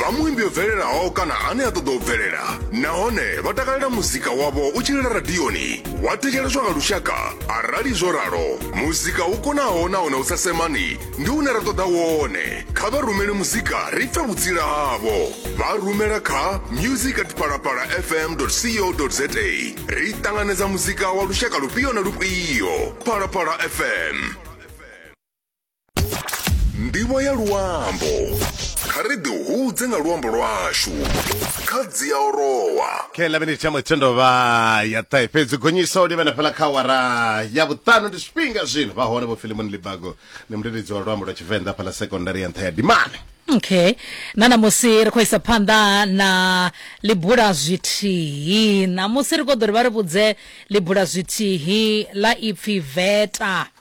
vha muimbi o bvelelaho kana ane a ṱoḓa u bvelela nahone vha takalela muzika wavho u tshilila radioni wa thetsheleswa nga lushaka arali zwo ralo muzika u konaho nahone u sa semani ndi une ra ṱoḓa wone kha vha rumele muzika ri pfe vhutsila havho vha rumela kha music at palapala fm co za ri ṱanganedza muzika wa lushaka lufhio na lufhio palapala fm ndivho ya luambo kha ri ḓi hudze nga luambo lwashu kha dzia orowa okay ḽa miniti ya muthendo vha ya ṱahe fhedzi gonyisa u livhana fhela kha wara ya vhuṱanu ndi zwifhinga zwino vha hone vho filimoni libago ndi mudededzi wa luambo lwa tshivenḓa fhala sekondari ya nṱha ya dimane okay na ṋamusi ri khou isa phanḓa na libula zwithihi ṋamusi ri khou ḓo ri vha ri vhudze libula zwithihi ḽa ipfi veta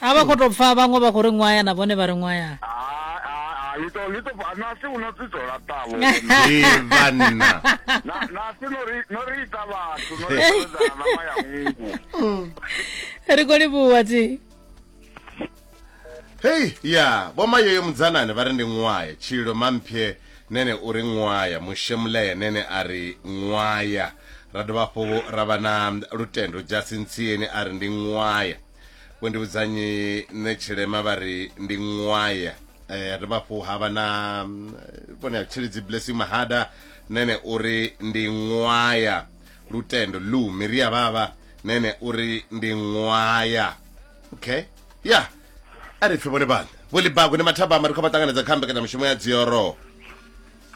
a vha khou tou pfa vhaṅwe vha khou ri ṅwaya na vhone vha ri ṅwaya lito lito nasi uno tsitso la tavo vanna nasi nori nori ita vhathu nori ita na maya ngu mm. ri kho livhuwa tsi hey ya vho mayoyo mudzanane vha ri ndi ṅwaya tshilo mamphye nene u ri ṅwaya mushemuleye nene a ri ṅwaya ra dovha hafhu ra vha na lutendo jasintsieni a ri ndi ṅwaya vho ndi vhudzanyi nṋe tshilema vha ri ndi ṅwaya eh, ha dovha hafhu ha vha na mm, vhone ha tshilidzi blessing mahada nene uri ndi ṅwaya lutendo lu miri ya vhavha nene uri ndi ṅwaya okay ya a ri pfe vhone vhana vho libago ndi mathabama ri khou vha ṱanganedza kha mbekanyamushumo ya dzioro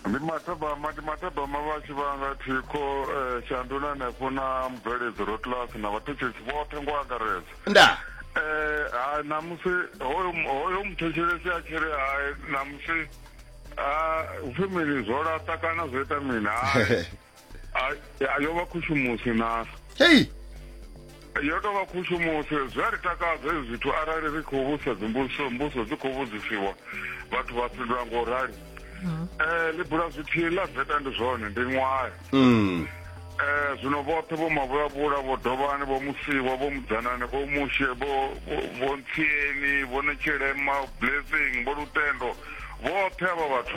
Ndi mathabama ndi mathabama vhashu vha nga thikho eh, shanduni hanefho na mubveledzi rotlas na vhathetshelesi vhoṱhe ngo angaredza nda eh ha namusi hoyo hoyo muthetshelesi a tshiri hai namusi a ufemeli zwo laṱa kana zwo ita mini hai a yo vha khushumusi na hei yo tou vha khushumusi zwi a ri takadza hezwi zwithu arali ri khou vhusa dzimbuso mbuso dzi khou vhudzisiwa vhathu vha fhindula ngo rali um eh, ḽi bula zwithihi ḽa veta ndi zwone ndi ṅwayo um eh, zwino vhoṱhe vho mavhulavhula vho dovhani vho musiwa vho mudzanane vho mushe vho ntsieni vho netshilema blessing vho lutendo vhoṱhe avha vhathu